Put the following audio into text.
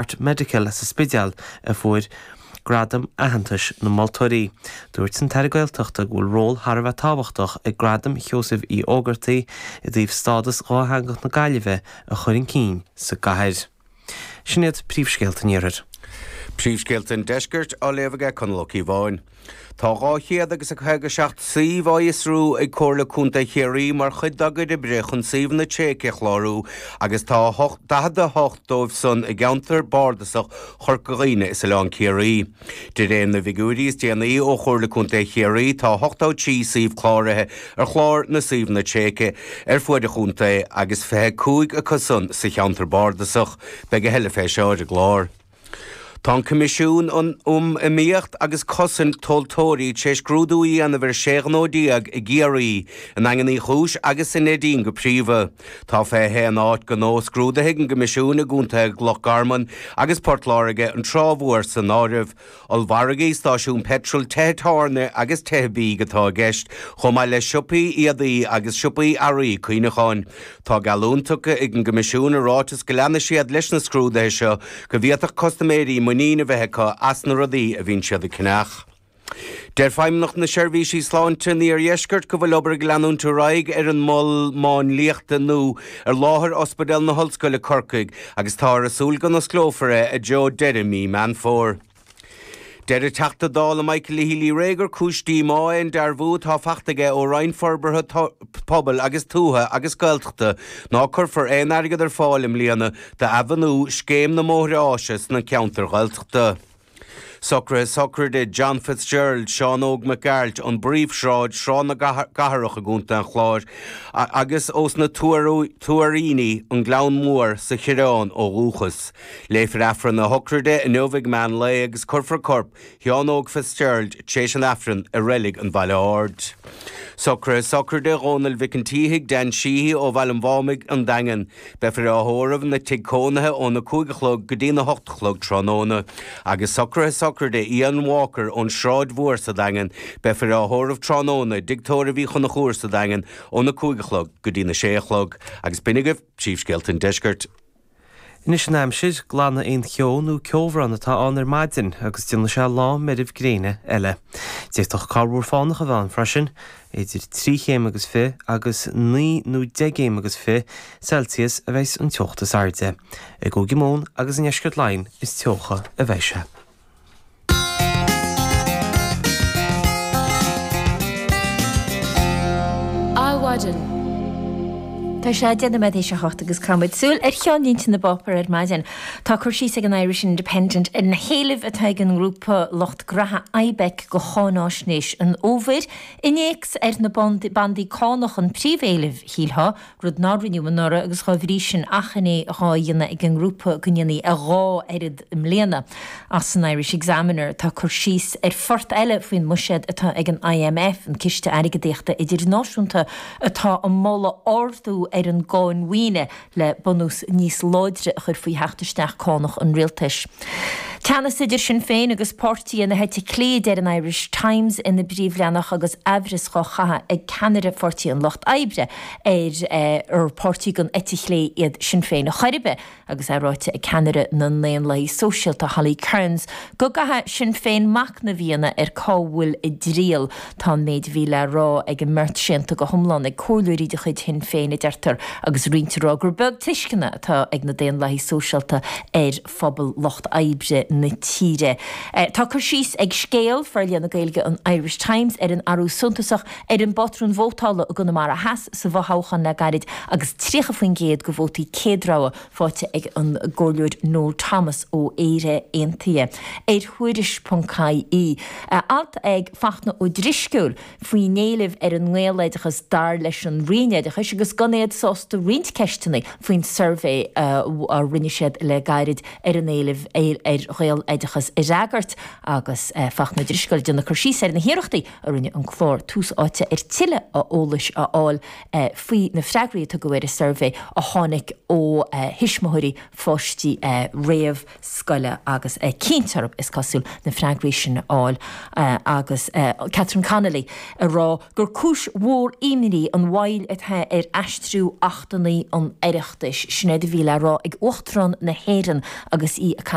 Heart Medical sa Spidéal a fuair Gradam Aitheantais na Moltóirí. Dúirt an tAire Gaeltachta go bhfuil ról thar a bheith tábhachtach ag Gradam Sheosaimh Uí Ógartaigh i dtaobh stádas dhátheangach na Gaillimhe a chur chun cinn sa gcathair. Sin iad príomhscéalta an iarthair. Príomhscéalta an deiscirt á léamh aige Conall Ó Cíobháin. Tá 257 suíomh á fhiosrú ag Comhairle Contae Chiarraí mar chuid dá gcuid oibre chun suíomhanna tréigthe a chlárú agus tá 48 dóibh san i gceantar bardasach Chorca Dhuibhne is Oileán Ciarraí. De réir na bhfigiúirí is déanaí ó Chomhairle Contae Chiarraí tá 83 suíomh cláraithe ar chlár na suíomhanna tréigthe ar fuaid an chontae agus 25 acu san sa cheantar bardasach. Beidh a thuilleadh fé seo sa chlár. Tá an Coimisiún um Iomaíocht agus Cosaint Tomhaltóirí tar éis scrúdú a dhéanamh ar 16 ghnó i gCiarraí, i nDaingean Uí Chúis agus i Neidín go príomha. Tá 21 áit ghnó scrúdaithe ag an gCoimisiún i gcontaetha Loch Garman agus Port Láirge, an Trá Mhór san áireamh. Ollmhargaí, stáisiúin peitril, tithe tábhairne agus tithe bídh atá i gceist, chomh maith le siopaí éadaí agus siopaí earraí cuimhneacháin. Tá geallúint tugtha ag an gCoimisiún i ráiteas go leanfaidh siad leis na scrúduithe seo go bhféadfadh custaiméirí muinín a bheith acu as na rudaí a bhíonn siad ag ceannach. Deir Feidhmeannacht na Seirbhíse Sláinte san Iardheisceart go bhfuil obair ag leanúint ar aghaidh ar an Mol Máinliachta nua ar láthair Ospidéal na hOllscoile, Corcaigh, agus táthar ag súil go n-osclófar é i dtreo deireadh mí Meán Fómhair. Deir an Teachta Dála Michael Healy-Rae gur cúis díomá é an dearbhú atá faighte aige ó Roinn Forbartha Pobail agus Tuaithe agus Gaeltachta ná cuirfear aon airgead ar fáil i mbliana d'athbhunú Scéim na mBóithre Áise sna ceantair Ghaeltachta. Socruithe sochraide John Fitzgerald, Seán Óg Mac Gearailt, ón bPríomhshráid, Sráid na gCathrach i gContae an Chláir agus ós na Tuairíní, An Gleann Mór, Cathair Saidhbhín ó dhúchas. Léifear Aifreann na sochraide inniu ag meán lae agus cuirfear corp Sheán Óg Fitzgerald tar éis an Aifrinn i reilig an Bhaile Aird. Socruithe sochraide Dhónaill Mhic an tSíthigh, Dan Sheehy, ó Bhaile an Mhámaigh, An Daingean. Beifear á thórramh ina thigh cónaithe óna cúig a chlog go dtí a hocht a chlog tráthnóna. Agus socruithe sochraide Ian Walker ón Sráid Mhór sa Daingean. Beifear á thórramh tráthnóna i dtigh tórraimh Uí Chonchúir sa Daingean óna cúig a chlog go dtí a sé a chlog. Agus b'in agaibh príomhscéalta an Deiscirt. Anois an aimsir, glanfaidh aon cheo nó ceobhrán atá ann ar maidin agus déanfaidh sé lá meirbh gréine eile. D'fhéadfadh corrmhúr fánach a bheith ann freisin, idir trí chéim agus fiche agus naoi nó deich gcéim agus fiche Celsius a bheas an teocht is airde. I gCúige Mumhan agus i ndeisceart Laighean is teocha a bheidh sé. Ar maidin. Tá sé deich nóiméad tar éis a 7 agus caithfidh muid súil ar cheannlínte na bpáipéar ar maidin. Tá cur síos ag an Irish Independent ar na héilimh atá ag an ngrúpa lucht gnótha Ibec do cháinaisnéis an fhómhair. Innéacs ar na bandaí cánach an príomhéileamh, shílfeá, rud nár rinneadh anuraidh agus dá bhrí sin achainí dhá dhéanamh ag an ngrúpa go ndéanfaí a dhá oiread i mbliana. Ach san Irish Examiner tá cur síos ar phort eile faoin mbuiséad atá ag an IMF, an Ciste Airgeadaíochta Idirnáisiúnta, atá ag moladh ardú ar an gcáin mhaoine le bunús níos láidre a chur faoi theacht isteach cánach an rialtais. Teannas idir Sinn Féin agus páirtithe na heite clé, a deir an Irish Times ina bpríomhleathanach agus aimhreas dhá chaitheamh ag ceannaire Pháirtí an Lucht Oibre, ar ar páirtí den eite chlé iad Sinn Féin ar chor ar bith, agus é ráite ag ceannaire na nDaonlathaithe Sóisialta, Holly Cairns, go gcaithfeadh Sinn Féin machnamh a dhéanamh ar cá bhfuil a dtriall. Tá an méid a bhí le rá ag an mbeirt séanta go hiomlán ag comhairleoirí de chuid Shinn Féin, a deirtear, agus roinnt ag rá gur beag tuisceana atá ag na Daonlathaithe Sóisialta ar phobal lucht oibre na tíre. Tá cur síos ag Scéal, forlíonadh Gaeilge an Irish Times ar an athrú suntasach ar an bpatrún vótála i gConamara Theas sa bhfothoghchán le gairid agus 30% de vótaí céadrogha faighte ag an gComhairleoir Noel Thomas ó Éire Aontaithe. Ar Thuairisc.ie. Alt ag Fachtna Ó Drisceoil. faoin éileamh ar an ngaeloideachas dar leis an Roinn Oideachais agus gan iad sásta roinnt ceisteanna faoin suirbhé a rinne siad le gairid ar an éileamh ar ghaeloideachas a fhreagairt agus Fachtna Ó Drisceoil ag déanamh cur síos ar na hiarrachtaí a rinne an clár Tús Áite ar tuilleadh eolais a fháil faoi na freagraí a tugadh ar an suirbhé a tháinig ó thuismitheoirí pháistí réamh scoile agus cinnte orthu, is cosúil, na freagraí sin a fháil agus Catherine Connolly ag rá gur cúis mhór imní an mhoill atá ar aistriú achtanna an Oireachtais. Sin éard a bhí le rá ag Uachtarán na hÉireann agus í ag caint.